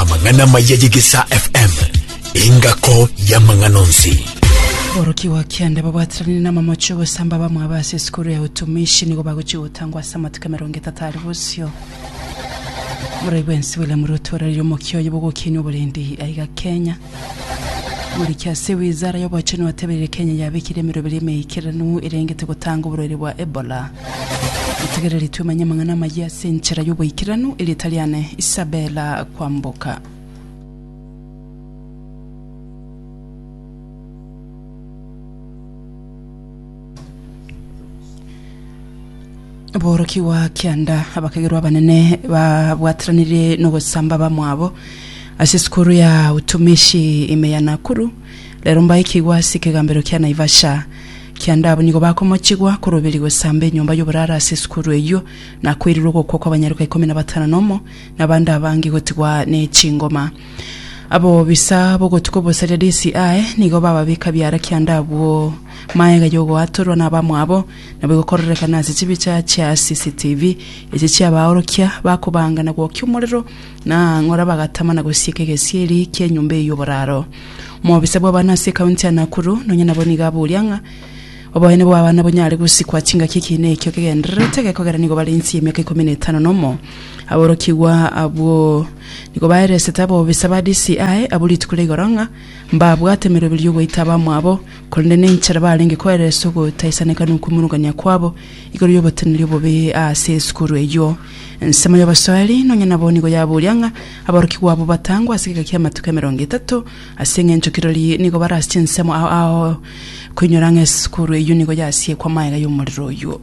amang'ana amaya yegesa fm engako y'amang'ana onsi Boroki wa kianda babwatirani na mamocho gosamba bamwe abase sikuru ya utumishi nigo bagochi gotangwa ase amatuko emerongo etato ari bosio Murai bwensi William Ruto orarire omokio oyo bogokini oborendi aiga Kenya Moriki ase wizara y'obochenu atebeire Kenya yabekire emeroberi emeikeranu erengete gotanga oborwaire bwa Ebola. Motegereri twemanye amang'ana amayia ase enchera y'oboikeranu, erieta riane Isabella Kwamboka. borokigwa kianda abakegerwa abanene babwateranire nogosamba bamwabo ase esukuru ya utumishi ime ya Nakuru rero mbaikigwa ase ekegambero kia Naivasha kianda abwo nigo bakomochigwa koroberia gosamba enyomba yoborara ase esukuru eyio na koirirwa ogokwa kwa abanyaruka ikomi na batano nomo na abande abange gotigwa ne chingoma Abobisa b'ogotuko bosaria Risi aye nigo bababeka biara kianda abwo. Maega y'ogoatorwa nabamwabo nabo egokororekana ase chibicha chia CCTV echi chi'abaorokia bakobanga na gwokia omorero na ang'ora bagatama na gosieka egesieri ki'enyomba eye y'oboraro. Omobisa bw'abana ase ekaunti ya Nakuru nonya nabo nigo aburia ng'a oboene bw'abana bonyare gosikwa chingaki ekiina ekio kegendererete gekogera nigo bare inse y'emiaka ikomi na etano nomo aborokigwa abwo Nigo baeresete abobisa ba DCI abwo rituko ria igoro ng'a mbabwate emeroberio y'ogoita abamwabo, korende nenchera barenge koereswa ogotaisaneka nokwimurungania kwabo igoro y'oboteneneri obobe ase esukuru eyio. Ensemo y'obosoeri nonya nabo nigo yaburia ng'a aborokigwa abwo batangwe ase egeka ki'amatuko emerongo etato, ase engencho kirori nigo barase chinsemo ao ao koinyora ng'a esukuru eyio nigo yasiekwa amaega y'omorero oyio.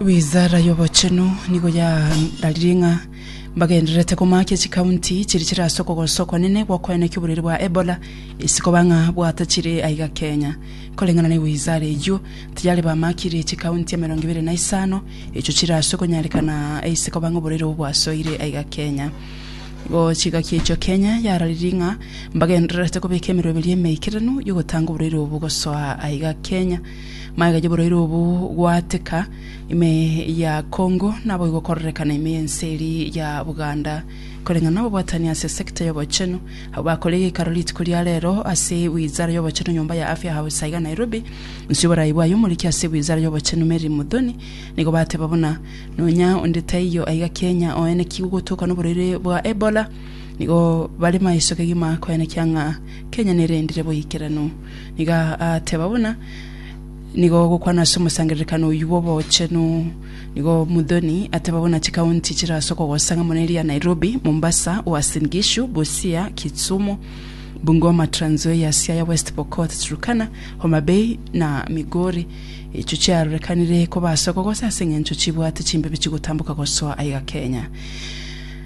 Wizara y'obochenu nigo yararire ng'a mbagendererete komakia chikaunti chiria chire ase okogosa okonene gw'okoenekia oborwaire bwa Ebola, ase koba ng'a bwatachire aiga Kenya. Koreng'ana ne wizara eyio, tayari bamakire chikaunti emerongo ebere na isano echio chire ase okonyarekana ase koba ng'a oborwaire obwo bwasoire aiga Kenya. Igo chigakia echio Kenya yararire ng'a mbagendererete kobeka emeroberio emeikeranu y'ogotanga oborwaire obwo gosoa aiga Kenya. Magega y'oboraire obo gwateka ime ya Congo nabo igokorerekana ime y'ense eri ya Buganda. Koreng'ana n'obobwatani ase sector y'obochenu, abwo bakore egeikaro rituko ria rero ase Wizara y'obochenu nyomba ya Afya House aiga Nairobi. Nsuya oboraai bwaye omoriki ase Wizara y'obochenu Mary Muthoni nigo bateba buna nonya onde taiyo aiga Kenya oenekigwe gotoka noboraire bwa Ebola nigo bare maiso kegima koenekia ng'a Kenya nerendire boikeranu. Nigo ateeba buna nigo ogokwana ase omosangererekano oyio bw'obochenu. Nigo Muthoni ateeba buna chikaunti chire ase okogosa ng'a mono eria Nairobi, Mombasa, Uasin Gishu, Busia, Kisumu, Bungoma, Trans Nzoia, Siaya, West Pokot, Turkana, Homa Bay na Migori. Echio chiarorekanire koba ase okogosa ase eng'encho chibwate chimbibe chigotamboka gosoa aiga Kenya.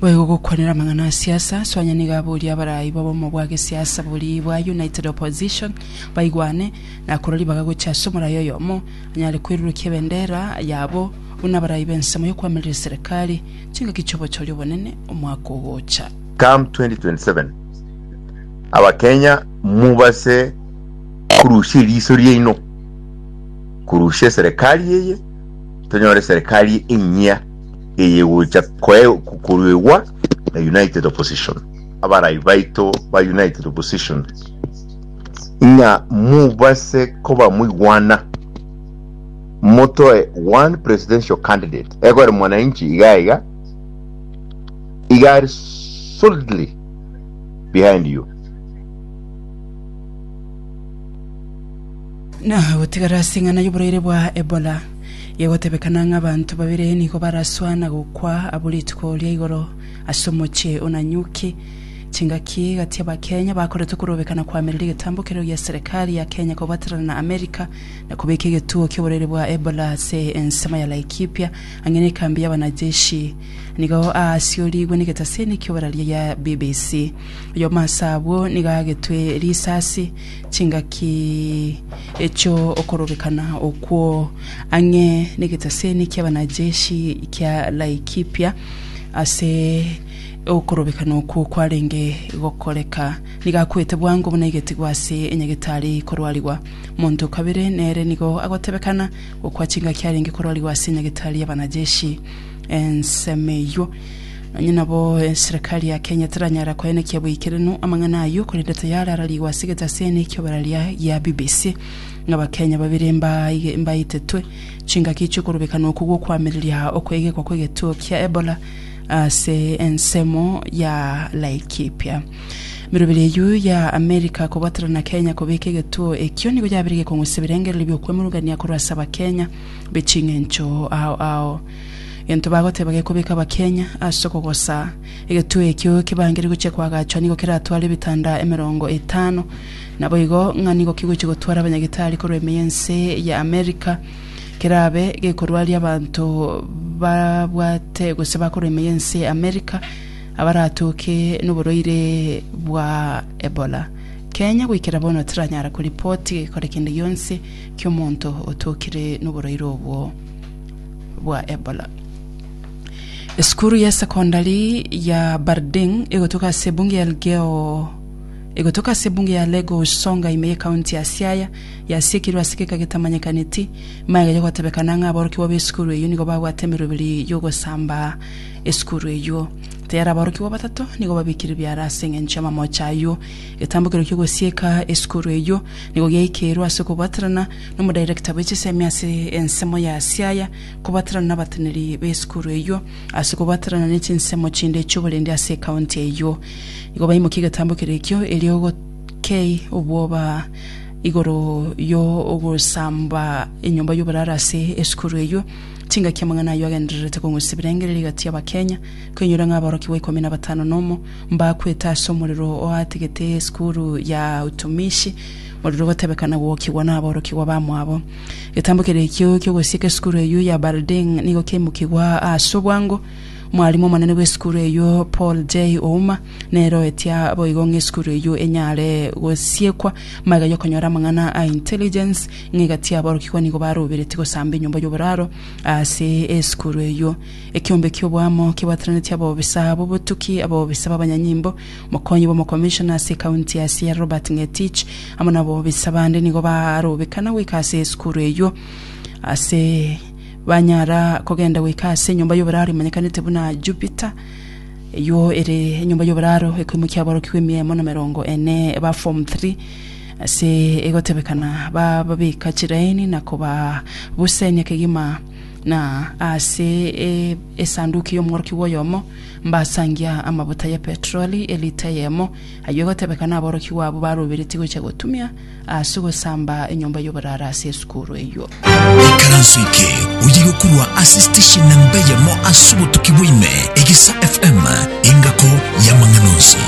Boigo ogokwanera amang'ana a siasa, soanya nigo aboria abarai b'obomo bwa gesiasa boria bwa United Opposition baigwane, na korwa ribaga gochia ase omorai oyomo anyare kwerurukia ebendera yabo buna abarai b'ensemo y'okwamiria serikali chingaki chi'obochori obonene omwaka ogocha. Come 2027 abakenya mubase korusia eriso riaino korusia eserekari eye tonyore eserekari enyia. eyegocha koruegwa na United Opposition. Abarai baito ba United Opposition, ng'a mobase koba moigwana, motoe one presidential candidate, ekore mwananchi iga iga, iga are solidly behind you. Na gotigara as'eng'ana y'oboraire bwa Ebola. Igotebekana ng'a abanto babere nigo baraswa na gokwa abwo rituko ria igoro ase omochie o Nanyuki. Chingaki gati y'Abakenya bakoretwe korobekana koamerera egetambo keria gia serikali ya Kenya kobwaterana na Amerika na kobeka egetuo ki'oborwaire bwa Ebola ase ensemo ya Laikipia ang'e nekambi y'abanajeshi nigo aasiorigwe negetaseni ki'oboraria gia BBC. Oyomo ase abwo nigo agetwe risasi Chingaki echio okorobekana okwo ang'e negeteseni kiabanajeshi kia Laikipia ase okorobekana okwo kwarenge gokoreka, nigo akwete bwango buna egetigwa ase enyagetari korwarigwa. Monto o kabere nere nigo agotebekana gokwa chingaki arenge korwarigwa ase enyagetari y'abanajeshi ensemo eyio. Onye nabo eserekari ya Kenya teranyara koenekia boikeranu amang'ana ayio korende tayare ararigwe ase egetase ene ki'oboraria gia BBC ng'a Abakenya babere mbaige- mbaitetwe chingaki chi'okorubekana okwo gw'okoamereria okoegekwa kw'egetuo kia Ebola ase ensemo ya Laikipia. Emeroberi eyio ya America kobwaterana na Kenya kobeka egetuo ekio nigo yabire gekong'usa ebirengererio bi'okwemurungania korwa ase Abakenya b'eching'encho ao ao Egento bagoteba gekobeka abakenya ase okogosaa. Egetuo ekio kebangerie gochia koagachwa nigo keratware ebitanda emerongo etano. Naboigo ng'a nigo kigochia gotwara abanyagitari korwa ime y'ense ya America. Kerabe gekorwaria abanto babwate gose bakorwa ime y'ense ya America abaratoke noborwaire bwa Ebola. Kenya goikera bono teranyara koripoti gekore kende gionsi ki'omonto otokire noborwaire obwo. bwa Ebola. Esukuru ya sekondari ya Barding egotoka ase ebunge ya Elgeyo egotoka ase ebunge ya Lagos Songa ime y'ekaunti ya Siaya yasiekirwe ase egeka getamanyekaneti magega yogotebekana ng'a aborokigwa b'esukuru eyio nigo babwate emeroberi y'ogosamba esukuru eyio tayari aborokigwa batato nigo babikire biara ase eng'encho y'amamocha ayio egetambokero ki'ogosieka esukuru eyio nigo giaikeirwe ase okobwaterana nomodirector bwe chisemi ase ensemo ya Siaya, kobwaterana nabateneri b'esukuru eyio, ase kobwaterana ne chinsemo chinde chi'oborendi ase ekaunti eyio. Igo baimokia egetambo keria ekio erio gokei obwoba igoro yo ogosamba enyomba y'oboraro ase esukuru eyio. Chingaki amang'ana ayio agendererete kong'usa ebirengererio egati y'Abakenya, koinyora ng'a aborokigwa ikomi na batano nomo mbakwete ase omorero oatigete esukuru ya utumishi, Morero gotebekana gwokigwa naborokigwa bamwabo. Getambo keria ekio ki'ogosieka esukuru eyio ya Balding nigo kiaimokigwa ase obwango. Omwarimu omonene bw'esukuru eyio, Paul J. Ouma, nere oetia boigo ng'a esukuru eyio enyare gosiekwa magega y'okonyora amang'ana a intelligence ng'a egati aborokigwa nigo baroberetie gosamba enyomba y'oboraro ase esukuru eyio. Ekeombe ki'oboamo kebwatananetie abobisa b'obotuki, abobisa b'abanyanyimbo, Mokonyi bw'omokomishona ase ekaunti ya Siaya Robert Ngetich amo nabobisa bande nigo barobekana goika ase esukuru eyio ase banyara kogenda goika ase enyomba y'oboraro emanyekanete buna Jupiter eyio ere enyomba y'oboraro ekoimokia aborokigwa emia emo na merongo ene ba form 3 ase egotebekana bababeka chiraini na kobabusenia kegima na ase esanduki y'omworokigwa oyomo Mbasangia amabuta ye petroli elita eyemo, ayio egotebeka naborokigwa abwo baroberetie gocha gotumia ase gosamba enyomba y'oborara ase esukuru eyio. Ekaranso eke oye gokurwa ase station namba eyemo ase obotuki bwaime, Egisa FM, engako y'amang'ana onsi.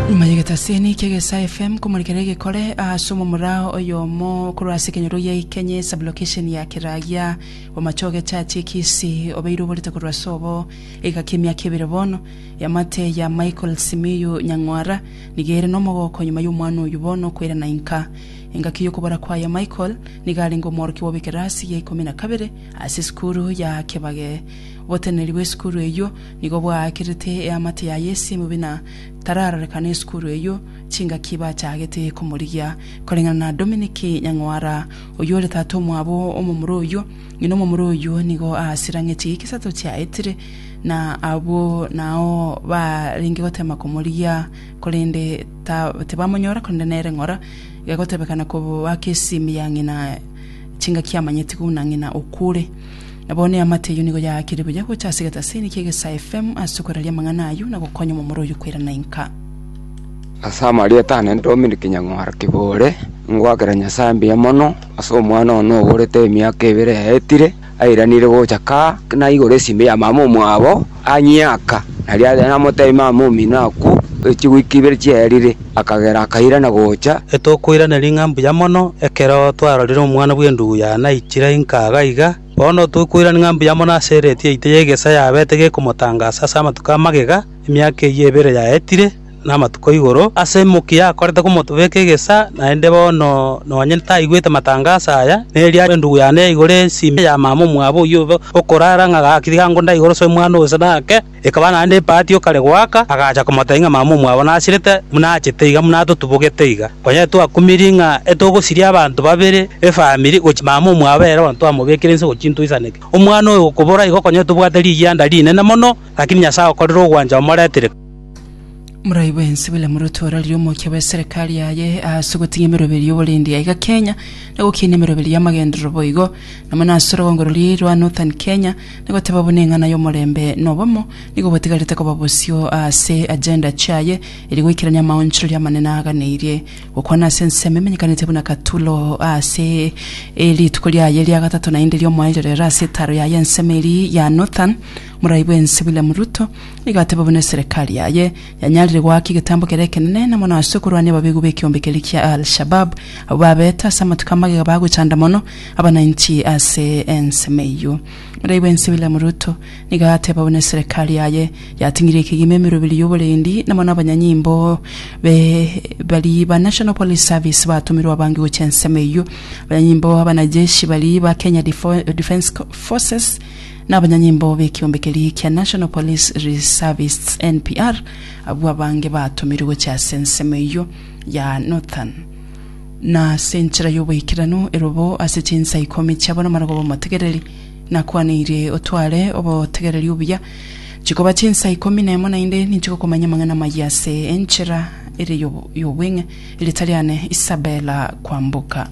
Nyuma y'egetasiini kia Egesa FM komorekera egekore ase omomura oyomo korwa ase ekenyoro gia Ikenye, sublocation ya Keragia, Omochie ogechaachie ekisi obeire oborete korwa ase obo egaka emiaka ebere bono. Eamate ya Michael Simiyu Nyang'wara nigo ere nomogooko nyuma y'omwana oyio bono kwerana inka. Engaki y'okobora kwaye Michael nigo arenge omworokia bw'ekerasi ya ikomi na kabere ase esukuru ya Kebage. Oboteneneri bw'esukuru eyio nigo bwaakerete eamate yaye esimi buna tararorekane esukuru eyio chingaki bachaagete komorigia koreng'ana na Dominic Nyang'wara. Oyio ore tata omwabo omomura oyio, ng'ina omomura oyio nigo aasirang'etie egesato chiaetire, na abwo nao barenge gotema komorigia, korende ta- tibamonyora, korende nere ng'ora, gegotebekana koba ake esimi ya ng'ina chingaki amanyeti buna ng'ina okure. Na bono eamate eyio nigo yaakire buya gocha ase egetasini ki'egesae FM ase okoraria amang'ana ayio na gokonya omomura oyio koirana inka. Ase amarieta aane Dominic Nyang'ora Kibore, ngoakera Nyasae mbuya mono ase omwana one oborete emiaka ebere yaetire airanire gocha kaa, naigure esimi ya mama omwabo, Anyiaka, na riaria namoteeme amo omino akwo, e chigwika ibere chiaerire, akagera akairana gocha. Etokoiraneria ng'a mbuya mono ekero twarorire omwana bw'endugu ya naichire inka iga iga, bono tokoirania ng'a mbuya mono ase eredii yaito y'egesaa yabete gekomotangasa ase amatuko amagega emiaka eyio ebere yaetire, namatuko igoro ase emokia yakorete komotobeka egesa, naende bono nonye taigwete matangaso aya, neria endugu yane yaigora ensimi ya mama omwabo oyio obe okorara ng'a gaki tiga ngo ndaigore ase omwana oyo ase nake, ekaba naende epaati o kare goaka, agacha komotebia ng'a mama omwabo nasirete buna achete iga buna atotubogete iga. Konya etwakumirie ng'a etogosiria abanto babere efamiri gochia mama omwabo ere bono twamobekire inse gochia intwe isaneke. Omwana oyo gokobora igo konya etobwate rigianda rinene mono, lakini Nyasae agokorera ogwancha omoretire. Morai bwensi bile morotooraririe omokia bw'eserekari yaye ase ogotiga emeroberi y'oborendi yaye iga Kenya, na gokiina emeroberi y'amagenderero boigo. Namo nase orogongo roria rwa Northern Kenya, nagoteba buna eng'ana y'omorembe na obomo nigo botigarete koba bosio ase agenda chiaye eria goikerania amaonchoreria amanene aaganeirie. Gokwana ase ensemo emenyekanete buna Katulo ase rituko riaye ria gatato naende riomoerio rero ase etaaro yaye ensemo eria ya Northern, Morai bwensi bile Ruto, Nigo ateba buna eserekari yaye yanyarire goaka egetambo kere ekenene na mono ase okorwania ababegu b'ekeombe keria kia Al-Shabaab, abwo babete ase amatuko amagega bagochanda mono abananchi ase ensemo eyio. Morai bw'ense William Ruto nigo ateba buna eserekari yaye yating'ire ekegima emeroberi y'oborendi na mono abanyanyimbo be baria ba National Police Service batomirwe abange gochia ensemo eyio. Abanyanyimbo abanajeshi baria ba Kenya Defo- Defence Co- Forces na abanyanyimbo b'ekiombe keria kia National Police Reservists, NPR, abwo abange batomirwe gochia ase ensemo eyio ya Northern, na ase enchera y'oboikeranu erwe bo ase chinsa ikomi chiabo namarogwa b'omotegereri. Nakwanirie otware obotegereri obuya, chikoba chinsa ikomi nemo naende ninchigokomanyia amang'ana amayia ase enchera ere y'obweng'e. Erieta riane Isabella Kwamboka.